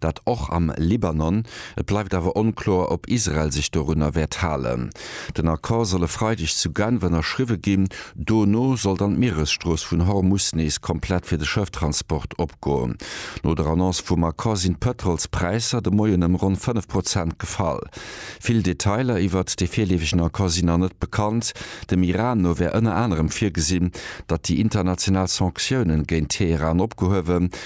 Dat och am Libanon. Et bleift awer onkloer, ob Israel sech dorunner wäert halen. Den Accord soll e Freideg zu Genf ënnerschriwwe ginn. Dono soll dann d'Mieresstrooss vun Hormus nees komplett fir de Schëfftransport opgoen. No der Annonce vum Accord sinn d'Pëtrolspräisser de Moien ëm ronn 5 Prozent gefall. Vill Detailer iwwert dee virleefegen Accord sinn nach net bekannt. Dem Iran no wär ënner anerem virgesinn, datt déi international Sanktiounen géint Teheran opgehuewen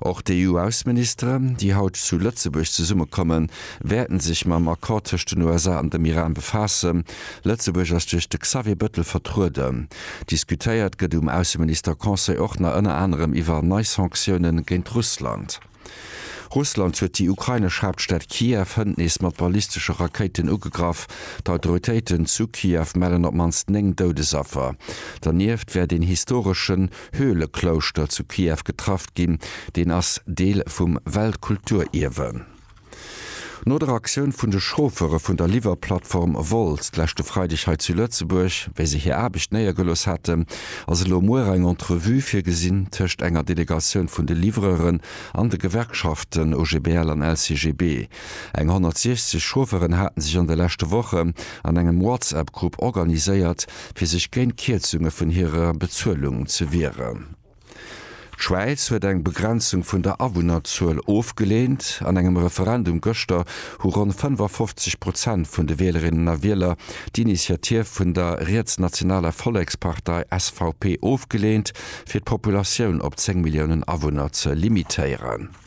Och d'EU-Ausseministere, déi haut zu Lëtzebuerg zesummekommen, wäerten sech mam Accord tëscht den USA an dem Iran befaassen. Lëtzebuerg ass duerch de Xavier Bëttel vertrueden. Diskutéiert gëtt um Ausseminister-Conseil och nach ënner anerem iwwer nei Sanktioune géint Russland. Russland huet déi ukrainesch Haaptstad Kiew hënt nees mat ballistesche Rakéiten ugegraff. D'Autoritéiten zu Kiew mellen op d'mannst 9 Doudesaffer. Dernieft wäert een historeschen Höhleklouschter zu Kiew getraff ginn, deen ass Deel vum Weltkulturierwe. No der Aktioun vun de Chauffeure vun der Liwwerplattform Wolt d'leschte Freideg hei zu Lëtzebuerg, wéi se hir Aarbecht néiergelooss haten, ass elo muer eng Entrevue virgesinn tëscht enger Delegatioun vun de Livreuren an de Gewerkschaften OGBL an LCGB. Eng 160 Chaufferen haten sech an de leschte Woche an engem WhatsApp-Grupp organiséiert, fir sech géint Kierzunge vun hirer Bezuelung ze wieren. D'Schwäiz huet eng Begrenzung vun der Awunnerzuel ofgeleent. An engem Referendum gëschter hu ronn 55 Prozent vun de Wielerinnen a Wieler d'Initiativ vun der rietsnationaler Vollekspartei SVP ofgeleent, fir d'Populatioun op 10 Milliounen Awunner ze limitéieren.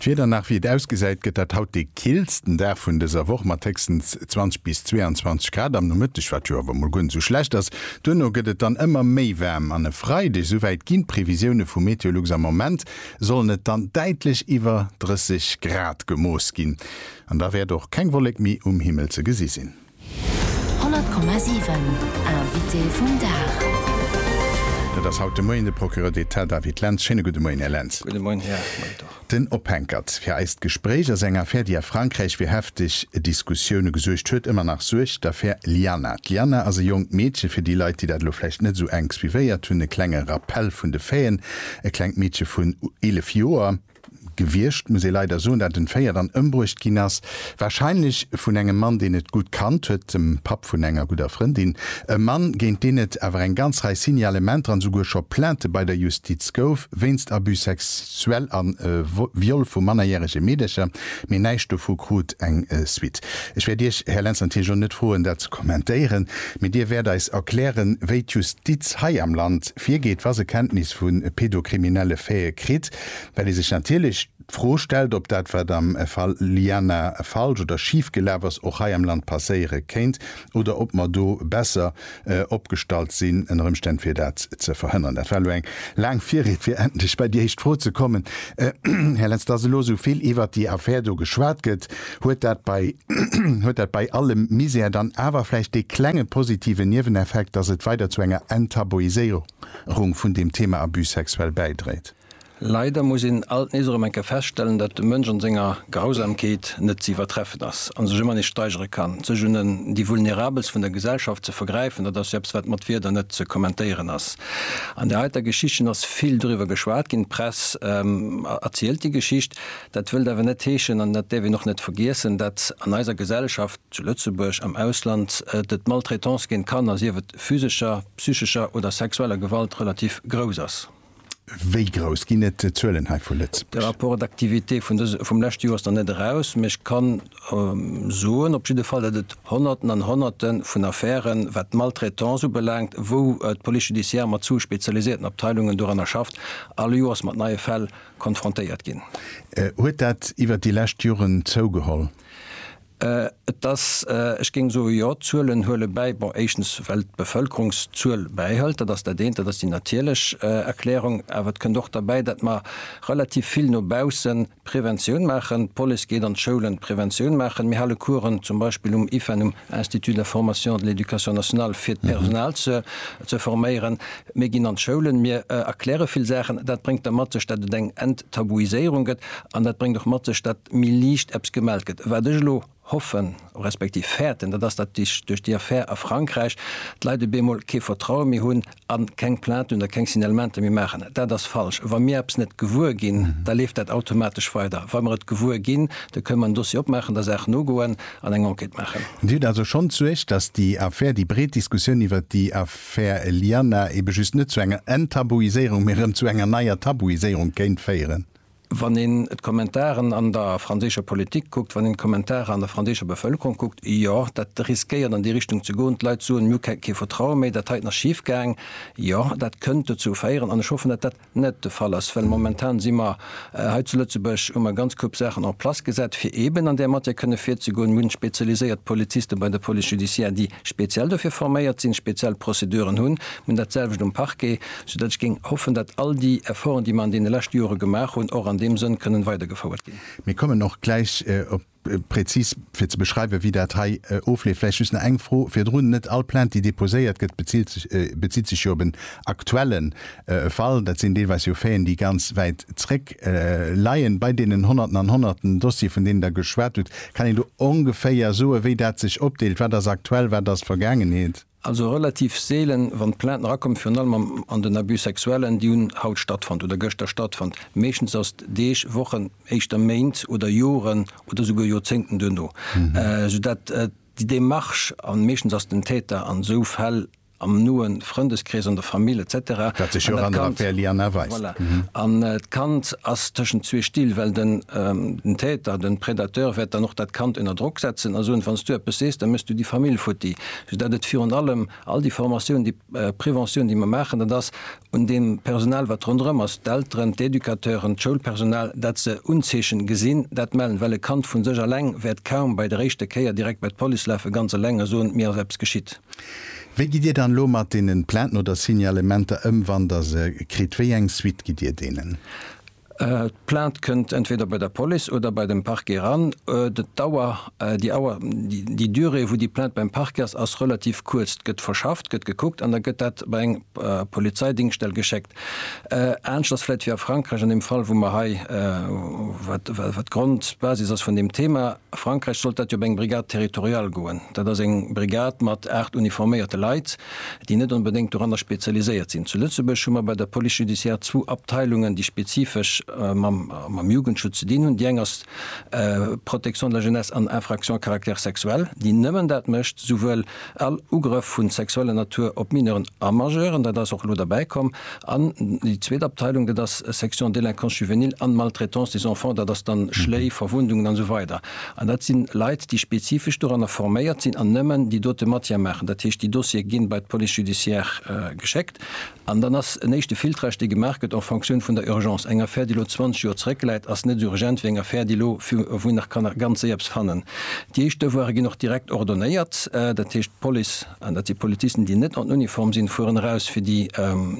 D'Wieder nach wéi et ausgesäit, gëtt dat haut dee killsten Dag vun dëser Woch mat héchstens 20 bis 22 Grad am Nomëtteg, wat jo awer mol guer net sou schlecht ass. Duerno gëtt et dann ëmmer méi waarm an e Freideg, souwäit ginn d'Previsioune vu Meteolux, am Moment sollen et dann däitlech iwwer 30 Grad gemooss ginn an da wäert och keng Wollek méi um Himmel ze gesi sinn. 100,7 Invité vum Dag. Dat ass haut de Moien de Procureur d'Etat David Lentz. Schéine gudde Moien, Här Lentz. Gudde Moien, Här Molitor. Den Ophenkert fir eist Gespréich ass eng Affär, déi a Frankräich fir hefteg Diskussioune gesuergt huet, ëmmer nach suergt, d'Affär Lianna. D'Lianna ass e jonkt Meedche, fir déi Leit, déi dat elo vläicht net esou enk suivéiert hunn, e klenge Rappell vun de Faiten, e klengt Meedche vun 11 Joer, Gewiescht, muss ee leider soen, dat entféiert an ëmbruecht ginn ass. Warscheinlech vun engem Mann, deen et gutt kannt huet, dem Papp vun enger gudder Frëndin. E Mann, géint deen et awer eng ganz Rei Signalementer an esouguer scho Plainte bei der Justiz gouf, wéinst Abus sexuels a Viol vu mannerjärege Meedercher. Mee näischt dovu krut eng Suite. Ech wäert Iech, Här Lentz, natierlech och net froen, dat ze kommentéieren. Mee Dir wäert eis erklären, wéi d'Justiz hei am Land virgeet, wa se Kenntnis vu pedo-kriminelle Faite kritt. Well ee sech natierlech d'Fro stellt, ob dat, wat am Fall Lianna falsch oder schif gelaf ass, och hei am Land passéiere kéint oder ob mer do besser opgestallt sinn ënner Ëmstänn, fir dat ze verhënneren. Dat war elo eng laang Virried, fir endlech bei déi éischt Fro ze kommen. Här Lentz, dass elo esou vill iwwert déi Affär do geschwat gëtt, huet dat bei, huet dat bei allem Misär dann awer vläicht dee klenge positiven Nieweneffekt, dass et weider zu enger Enttabuiséierung, rung vun deem Thema Abus sexuel bäidréit. Leider muss een alt nees erëm eng Kéier feststellen, datt de Mënsch an senger Grausamkeet net ze iwwertreffen ass an sech ëmmer nees steigere kann. Sech un en déi Vulnerabelst vun der Gesellschaft ze vergräifen, dat ass jo eppes wat mat Wierder net ze kommentéieren ass. An där heiter Geschichtchen ass vill driwwer geschwat ginn. D'Press erzielt déi Geschicht. Dat wëllt awer net heeschen, an dat däerf een och net vergiessen, datt an eiser Gesellschaft, zu Lëtzebuerg, am Ausland, et Maltraitance géint Kanner, sief et physescher, psychescher oder sexueller Gewalt relativ grouss ass. Wéi grouss? Ginn et Zuelen hei vu De Lëtzebuerg? Rapport d'activité vun dëse, vum leschte Joer ass nach net eraus, mee ech kann soen op jidde Fall, datt et Honnerten an Honnerte vun Affären, wat d'Maltraitance ubelaangt, wou d'Police judiciaire mat zu spezialisierten Abteilungen doranner schafft, all Joers mat neie Fäll konfrontéiert ginn. Huet dat iwwert déi lescht Joren zougeholl? Et ass, ech géing soen, jo, d'Zuelen huele bäi. Bon, éischtens, well d'Bevëlkerungszuel bäihëlt, dat ass dat eent, dat ass déi natierlech Erklärung. Awer et kënnt och derbäi, datt mer relativ vill no bausse Preventioun maachen. D'Police geet an d'Schoulen Preventioun maachen. Mir hale Coursen zum Beispill um IFEN, um Institut de la formation et de l'éducation nationale, fir d'Personal ze forméieren. Mir ginn an d'Schoulen, mir erkläre vill Saachen. Dat bréngt da mat sech, datt et eng Enttabuiséierung gëtt. An dat bréngt och mat sech, datt méi liicht eppes gemellt gëtt. Wat ech elo hoffen, respektiv fäerten, dat ass, datt duerch déi Affär a Frankräich d'Leit op eemol kee Vertraue méi hunn a keng Plainten oder keng Signalementer méi maachen. Dat ass falsch. Wa mir eppes net gewuer ginn, da leeft dat automatesch weider. Wa mer et gewuer ginn, da kënne mer en Dossier opmaachen, der Saach nogoen an eng Enquête maachen. Dir hutt also schonn d'Suerg, datt déi Affär, déi breet Diskussioun iwwert déi Affär Lianna, eebe just net zu enger Enttabuiséierung, mee erëm zu enger neier Tabuiséierung kéint féieren? Wann een d'Kommentaren an der franséischer Politik kuckt, wann een d'Kommentaren an der franséischer Bevëlkerung kuckt, jo, dat riskéiert an déi Richtung ze goen. D'Leit soen, mir hu kee Vertraue méi, dat hei ass nach schif gaang. Jo, dat kënnt dozou féieren, an ech hoffen, datt dat net de Fall ass, well momentan si mer hei zu Lëtzebuerg, hu mer e ganz Koup Saachen en place gesat, fir eeben an där Matière kënne virzegoen. Mir hunn spezialiséiert Poliziste bei der Police judiciaire, déi speziell dofir forméiert sinn, speziell Prozeduren hunn. Mir hunn datselwecht um Parquet. Soudatt ech géing hoffen, datt all déi Efforten, déi mer an deene leschte Jore gemaach hunn, och an deem Sënn kënnen weidergefouert ginn. Mir kommen och gläich op präzis, fir ze beschreiwen, wéi dat hei ofleeft. Vläicht just nach eng Fro virdrun, Net all Plainte, déi deposéiert gëtt, bezitt sech jo op en aktuelle Fall. Dat sinn deelweis jo Faiten, déi ganz wäit zréck leien. Bei deenen Honnerten an Honnerten Dossiere, vun deenen Der geschwat hutt, kann een do ongeféier soen, wéi dat sech opdeelt, wat ass aktuell, wat ass Vergaangenheet? Also relativ seelen, wann d'Plainte erakommt, virun allem am an den Abus sexuellen, déi hunn haut stattfonnt oder gëschter stattfonnt. Meeschtens ass et Deeg, Wochen, éischter Méint oder Joren oder souguer Joerzéngten duerno, soudat déi Demarche, an meeschtens ass den Täter an esou Fäll am noe Frëndeskrees, an der Famill et cetera, an dat Kand, voilà, an d'Kand ass tëschent zwee Still, well den den Täter, den Predateur wäert dann och dat Kand ënner Drock setzen a soen, wann s du eppes sees, da méchs du déi Famill futti. Dat et virun allem all déi Formatiounen, déi Preventioun, déi mer maachen, dat ass un deem Personal, wat ronderëm ass, d'Elteren, d'Educateuren, d'Schoulpersonal, dat se Unzeechen gesinn, dat mellen. Well e Kand vu sech eleng wäert kaum bei der éischter Kéier direkt bei d'Police lafe ganz eleng a soen, mir ass eppes geschitt. Wéi gitt Dir dann elo mat deenen Plainten oder Signalementer ëm, wann Der se kritt? Wéi eng Suite gitt Dir deenen? D'Plainte kënnt entweder bei der Police oder bei dem Parquet eran. D'Dauer, déi Auer, déi Durée wou déi Plainte beim Parquet ass, ass relativ kuerz. D'gëtt verschafft, gëtt gekuckt an da gëtt dat bei eng Polizeidingstell geschéckt. Anescht ass vläit wéi a Frankräich an deem Fall wou mer hei, wat d'Grond, d'Basis ass vun deem Thema, A Frankräich sollt dat jo op eng Brigade territoriale goen. Dat ass eng Brigade mat aacht uniforméierte Leit, déi net onbedéngt doranner spezialiséiert sinn. Zu Lëtzebuerg hu mer bei der Police judiciaire zwou Abteilungen, déi spezifesch mam Jugendschutz ze dinn hunn. Déi eng ass Protection de la jeunesse an Infractions à caractère sexuel, déi nëmmen dat mécht, souwuel All Ugrëff vu sexueller Natur op Mineuren a Majeuren, dat ass och elo derbäi komm. An déi zweet Abteilung, dat ass Section Délinquance juvénile an Maltraitance des enfants, dat ass dann Schléi, Verwundungen an esou weider. An dat si Leit, déi spezifesch doranner forméiert sinn an nëmmen déi dote Matière maachen. Dat heescht, déi Dossiere gi bei d'Police judiciaire geschéckt. An dann ass en éischte Filtrage, dee gemaach gëtt en Fonctioun vun der Urgence. Eng Affär, déi elo 20 Joer zrëckläit, ass net esou urgent wéi eng Affär, déi elo, wou een nach kann ganz séier eppes fannen. Déi éischt Devoire ginn och direkt ordonnéiert. Dat heescht, d'Police, an dat si Polizisten, déi net an Uniform sinn, fueren eraus, fir déi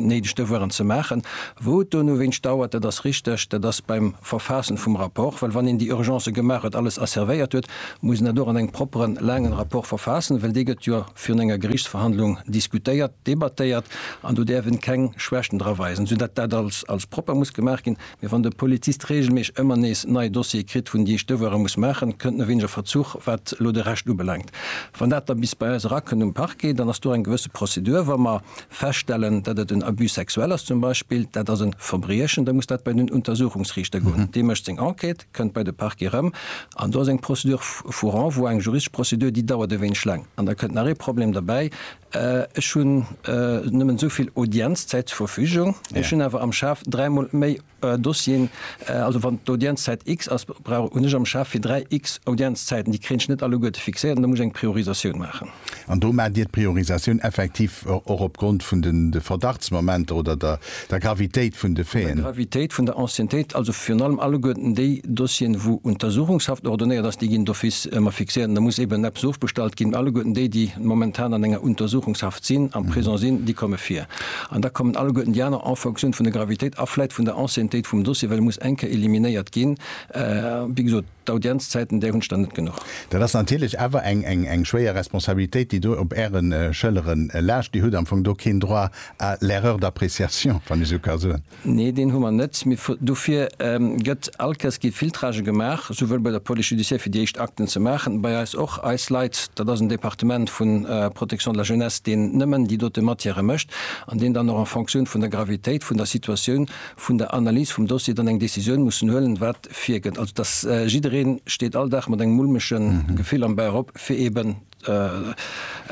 néideg Devoiren ze maachen. Wou et donowéinst dauert, dat ass richteg, dat ass beim Verfaassen vum Rapport. Well wann een déi Urgencë gemaach huet, alles asservéiert huet, muss een dat och an engem propperen, laangen Rapport verfaassen, well dee gëtt jo virun enger Geriichtsverhandlung diskutéiert. debattéiert an do däerf en keng Schwächten dra weisen, sou dat dat als als propper muss gemaach ginn. Mee wann de Polizist reegelméisseg ëmmer nees nei Dossiere kritt, vun déi ech d'Devoiren muss maachen, kënnt nowenesch e Verzuch wat elo de Rescht ubelaangt. Wann dat da bis bei eis erakënnt um Parquet, dann ass do eng gewësse Prozedur. Wa mer feststellen, dat et en Abus sexuel ass zum Beispill, dat ass e Verbriechen, da muss dat bei den Untersuchungsriichter goen. Dee mécht seng Enquête, kënnt bei de Parquet erëm an do ass eng Procédure vu renvoi, eng juristesch Prozedur, déi dauert e wéineg laang. An da kënnt nach ee Problem derbäi, Ech hunn nëmmen esou vill Audienzzäit zur Verfügung. Ech hunn awer am Schaf dräimol méi Dossieren. Also wann d'Audienzzäit X ass, brauch hunn ech am Schaf fir dräi X Audienzzäiten. Déi kréien ech net alleguerte fixéiert an da muss ech eng Priorisatioun maachen. An do maacht Dir d'Priorisatioun effektiv och opgrond vun de Verdachtsmomenter oder der der Gravitéit vun de Faiten. Der Gravitéit vun der Anciennetéit, also virun allem alleguerten déi Dossieren, wou Untersuchungshaft ordonnéiert ass, déi ginn d'office ëmmer fixéiert. Da muss eben eppes ofbestallt ginn. Alleguerten déi, déi momentan an enger Untersuchungshaft sinn, am Prisong sinn, déi komme vir. An da kommen alleguerten déi aner en fonction vun der Gravitéit a vläit vun der Anciennetéit vum Dossier, well e muss eng Kéier eliminéiert ginn. Wéi gesot, d'Audienzzäiten, där hunn ech der net genuch. Dat ass natierlech awer eng schwéier Responsabilitéit, déi do op Äre Schëllere laascht. Dir hutt am Fong do keen Droit Ah, l'erreur d'appréciation, wann ech sou ka soen. Nee, deen hu mer net. Mee dofir gëtt alkes gi Filtrage gemaach, souwuel bei der Police judiciaire, fir déi éischt Akten ze maachen, bei eis och. Eis Leit, dat ass en Departement vu Protection de la jeunesse, deen nëmmen déi dote Matièrë mécht an deen dann och en Fonctioun vun der Gravitéit vun der Situatioun, vun der Analys vum Dossier dann eng Décisioun mussen huelen, wat virgëtt. Also dass jidderee steet all Dag mat engem mulmege Gefill am Bauch op, fir eeben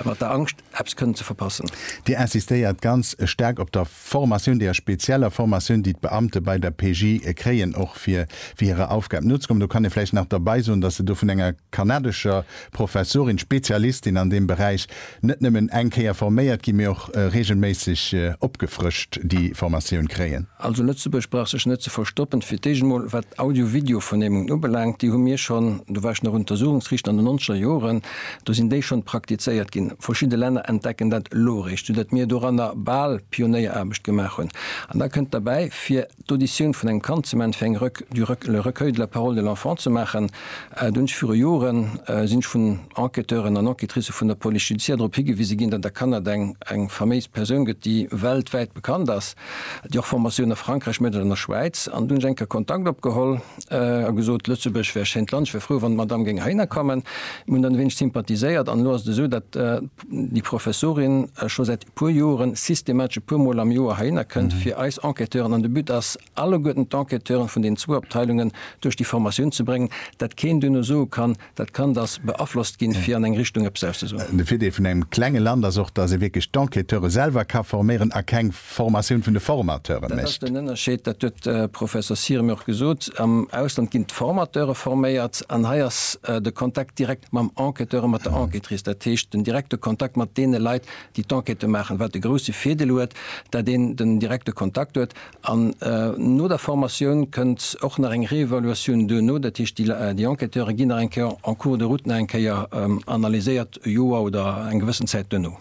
Mat der Angscht, eppes kënnen ze verpassen. Dir insistéiert ganz staark op der Formatioun, deeër spezieller Formatioun, déi d'Beamte bei der PJ kréien, och fir hirer Aufgab nozekommen. Do kann ee vläicht nach derbei soen, dass se do vun enger kanadescher Professorin, Spezialistin an deem Beräich, net nëmmen eng Kéier forméiert ginn, mee och reegelméisseg opgefrëscht déi Formatioun kréien. Also Lëtzebuerg brauch sech net ze verstoppen. Fir d'éischt emol, wat Audio-Video-Vernehmungen ubelaangt, déi hu mir schonn, do war ech nach Untersuchungsrichter an den nonzeger Joren, do sinn déi schonn praktizéiert ginn. Verschidde Länner entdecken dat elo eréischt, soudatt mir doranner bal Pionéieraarbecht gemaach hunn. An da kënnt derbäi, fir d'Auditioun vun engem Kand ze man, fir eng Rec du Rec le Recueil de la parole de l'enfant ze maachen. Do hunn ech viru Joren, sinn ech vun Enquêteuren an Enquêtricë vun der Police judiciaire drop higewise ginn, datt a Kanada eng eng faméis Persoun gëtt, déi weltwäit bekannt ass. Ech hu och Formatioun a Frankräich mat an der Schwäiz an hunn ech eng Kéier Kontakt opgeholl a gesot, Lëtzebuerg wär e schéint Land, ech wär frou, wann d'Madame géing heihinner kommen. Mir hunn dann e wéineg sympathiséiert an elo ass et esou, datt déi Professorin scho säit e puer Joren systematesch e puer Mol am Joer heihinner kënnt fir eis Enquêteuren, an de But ass, alleguerten d'Enquêteuren vun den zwou Abteilungen duerch déi Formatioun ze bréngen, datt keen duerno soe kann, Dat Kand ass beaflosst ginn, fir an eng Richtung eppes auszesoen. De Virdeel vun engem klenge Land ass och, datt ee wierklech d'Enquêteure selwer ka forméieren a keng Formatioun vun de Formateure mécht. Dat ass den Ënnerscheed, dat huet de Professor Sirem jo och gesot. Am Ausland ginn d'Formateure forméiert an hei ass de Kontakt direkt mam Enquêteur a mat der Enquêtrice, dat heescht den direkte Kontakt mat deene Leit, déi d'Enquête maachen, wat de grouse Virdeel huet, datt een den direkte Kontakt huet An no der Formatioun kënnt och nach eng Réévaluatioun duerno, dat heescht déi Enquêteure ginn nach eng Kéier en cours de route nach eng Kéier analyséiert, e Joer oder eng gewëssen Zäit duerno.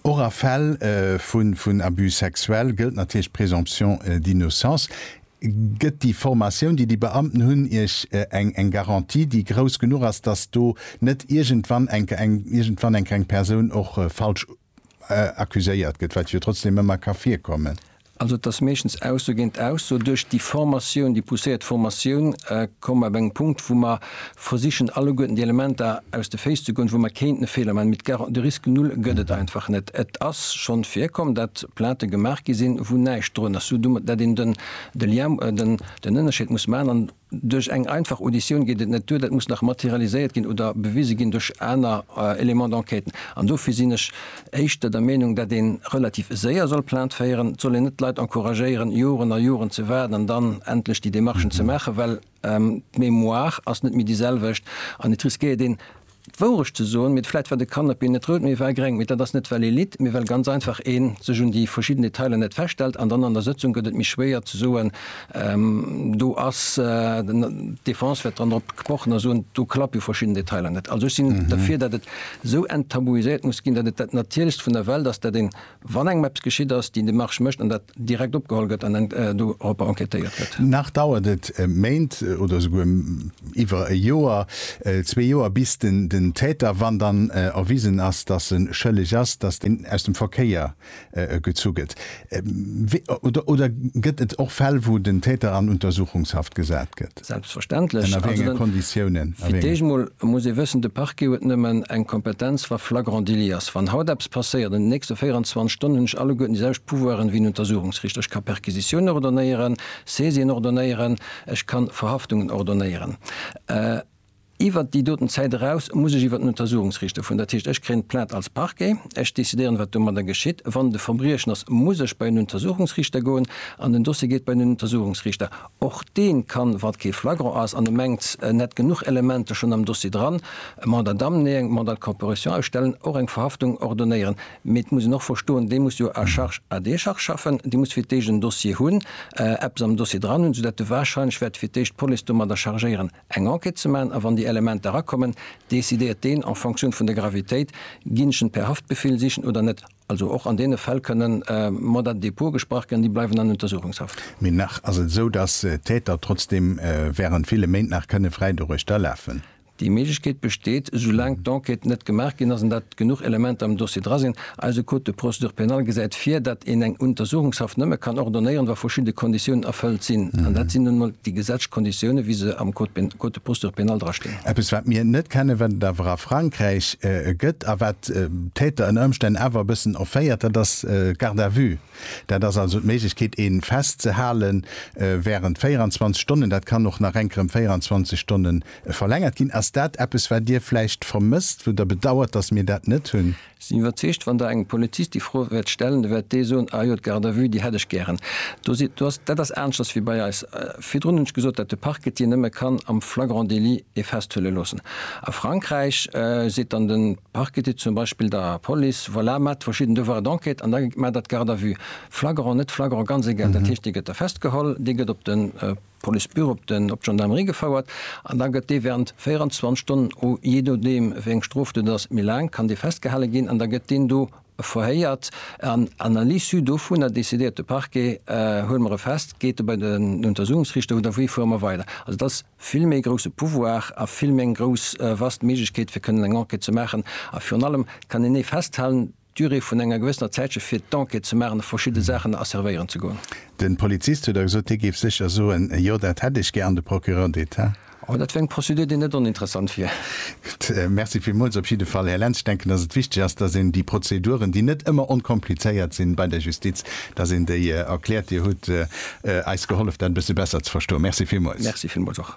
Och a Fäll vun Abus sexuels gëllt natierlech d'Présomption d'innocence. Gëtt déi Formatioun, déi déi Beamten hunn, Iech eng Garantie, déi grouss genuch ass, dass do net iergendwann enker eng Persoun och falsch accuséiert gëtt, wat jo trotzdem ëmmer ka virkommen. Also et ass meeschtens Ausso géint Ausso. Duerch déi Formatioun, déi pousséiert Formatioun, komme mer op engem Punkt, wou mer versichen alleguerten déi Elementer aus de Féiss ze goen, wou mer kéinten e Feeler maachen. Mee d'Ga, de Risque nul gëtt et einfach net. Et ass schonn virkomm, datt Plaintë gemaach gi sinn, wou näischt drun ass, sou du, datt een den, de Lien, den Ënnerscheed muss maachen. Duerch eng einfach Auditioun geet et net duer, dat muss nach materialiséiert ginn oder bewise ginn duerch aner Éléments d'enquête. An dofir sinn ech éischter der Meenung, dat ee relativ séier soll Plainte féieren. Et soll een net d'Leit encouragéieren, Joren a Joren ze waarden an dann endlech déi Démarchen ze maachen, well d'Mémoire ass net méi déi selwecht an et riskéiert een, D'Wourecht ze soen, mee vläit war de Kanapee net rout, mee e war gréng. Mee dat ass net well ee litt, mee well ganz einfach ee sech un déi verschidden Detailer net feststellt. An dann an der Sëtzung gëtt et méi schwéier ze soen, do ass d'Defense wäert dran drop pochen a soen, do klappe jo verschidden Detailer net. Also ech sinn derfir, datt et esou enttabuiséiert muss ginn, datt et dat Natierlechst vun der Welt ass, datt een Wann engem eppes geschitt ass, déi Demarche mécht an dat direkt opgeholl gëtt an doropper enquêtéiert gëtt. Nach dauert et Méint oder esouguer iwwer e Joer, zwee Joer, bis den Täter, wann dann erwisen ass, dass e schëlleg ass, dass deen aus dem Verkéier gezu gëtt. Oder gëtt et och Fäll, wou den Täter an Untersuchungshaft gesat gëtt? Selbstverständlech. Ënner wéi enge Konditiounen? Fir d'éischt emol muss ee wëssen, de Parquet huet nëmmen eng Kompetenz, wa flagrant délit ass. Wann haut eppes passéiert, an de nächste 24 Stonnen hunn ech alleguerten déi selwecht Pouvoiren wéi en Untersuchungsrichter. Ech ka Perquisitiounen ordonnéieren, Saisien ordonnéieren, ech ka Verhaftungen ordonnéieren. Iwwert déi doten Zäit eraus muss ech iwwert den Untersuchungsriichter vun. Dat heescht, ech kréien d'Plainte als Parquet, ech décidéieren, wat domadder geschitt. Wann et e Verbriechen ass, muss ech bei en Untersuchungsriichter goen an den Dossier geet bei den Untersuchungsriichter. Och dee kann, wa et kee Flagrant ass an e mengt, en hätt genuch Elementer schonn am Dossier dran, e Mandat d'amener, Mandat de comparution ausstellen, och eng Verhaftung ordonnéieren. Mee et muss en och verstoen, dee muss jo à charge, à décharge schaffen, dee muss fir d'éischt en Dossier hunn, eppes am Dossier dran hunn, soudatt e warscheinlech wäert fir d'éischt d'Police domadder chargéieren. eng Enquête ze maachen a wann déi Elementer erakommen, decidéiert deen en fonction vun der Gravitéit, ginn ech en per Haftbefehl sichen oder net. Also och an deene Fäll kënnen Mandat de dépôt gesprach ginn an déi bleiwen an Untersuchungshaft. Mee nach ass et esou, dass d'Täter trotzdeem während ville Méint nach kënne fräi doduerch da lafen. Déi Méiglechkeet besteet, soulaang d'Enquête net gemaach ginn ass an dat genuch Elementer am Dossier dra sinn. Eise Code de procédure pénale gesäit vir, datt een eng Untersuchungshaft nëmme kann ordonnéieren, wa verschidde Konditiounen erfëllt sinn. An dat sinn nun emol déi gesetzlech Konditiounen, wéi se am Code de procédure pénale drastinn. Eppes, wat mir net kennen, wat et awer a Frankräich gëtt a wat d'Täter ënner Ëmstänn awer e bëssen offéiert, dat ass d'Garde à vue. Dat ass also d'Méiglechkeet, ee festzehale während 24 Stonnen. Dat kann och nach enker ëm 24 Stonne verlängert ginn. Ass dat eppes, wat Dir vläicht vermësst, wou Der bedauert, datt mir dat net hunn? Sinn iwwerzeegt, wann Der engem Polizist déi Fro wäert stellen, da wäert dee soen, Ah jo, d'Garde à vue, déi hätt ech gären. Do si, do ass, dat ass aneschters wéi bei eis. Virdrun hunn ech gesot, dat de Parquet déi nëmme kann am flagrant délit ee festhuele loossen. A Frankräich seet dann de Parquet zum Beispill der Police, Voilà, maacht verschidden Devoirs d'enquête an da maacht Der d'Garde à vue. Flagrant, net flagrant, ganz egal. Dat heescht, dee gëtt da festgeholl, dee gëtt op de. D'Police beureupt en op d'Gendarmerie gefouert an da gëtt dee während 24 Stonnen, ou jee nodeem wéi eng Strof dat ass, méi laang, kann dee festgehale ginn an da gëtt deen do verhéiert an an à l'issue dovunner décidéiert de Parquet, huele mer e fest, geet e bei den Untersuchungsrichter oder wéi fuere mer weider. Also et ass vill méi grousse Pouvoir a vill méi eng grouss, vast Méiglechkeet fir kënnen eng Enquête ze maachen a virun allem kann een ee festhalen, Durée vun enger gewëssener Zäit scho fir d'Enquête ze maachen a verschidde Saachen asservéieren ze goen. Den Polizist huet da gesot, hie géif sécher soen, jo dat hätt ech gär an de Procureur d'Etat. Oh, dat wär eng Prozedur déi net oninteressant wier. Gutt, merci villmools op jidde Fall Här Lentz. Ech denken, datt et wichteg ass, datt een déi Prozeduren, déi net ëmmer onkomplizéiert sinn bei der Justiz, datt een déi erkläert. Dir hutt eis gehollef dat e bësse besser ze verstoen. Merci villmools. Merci villmools och.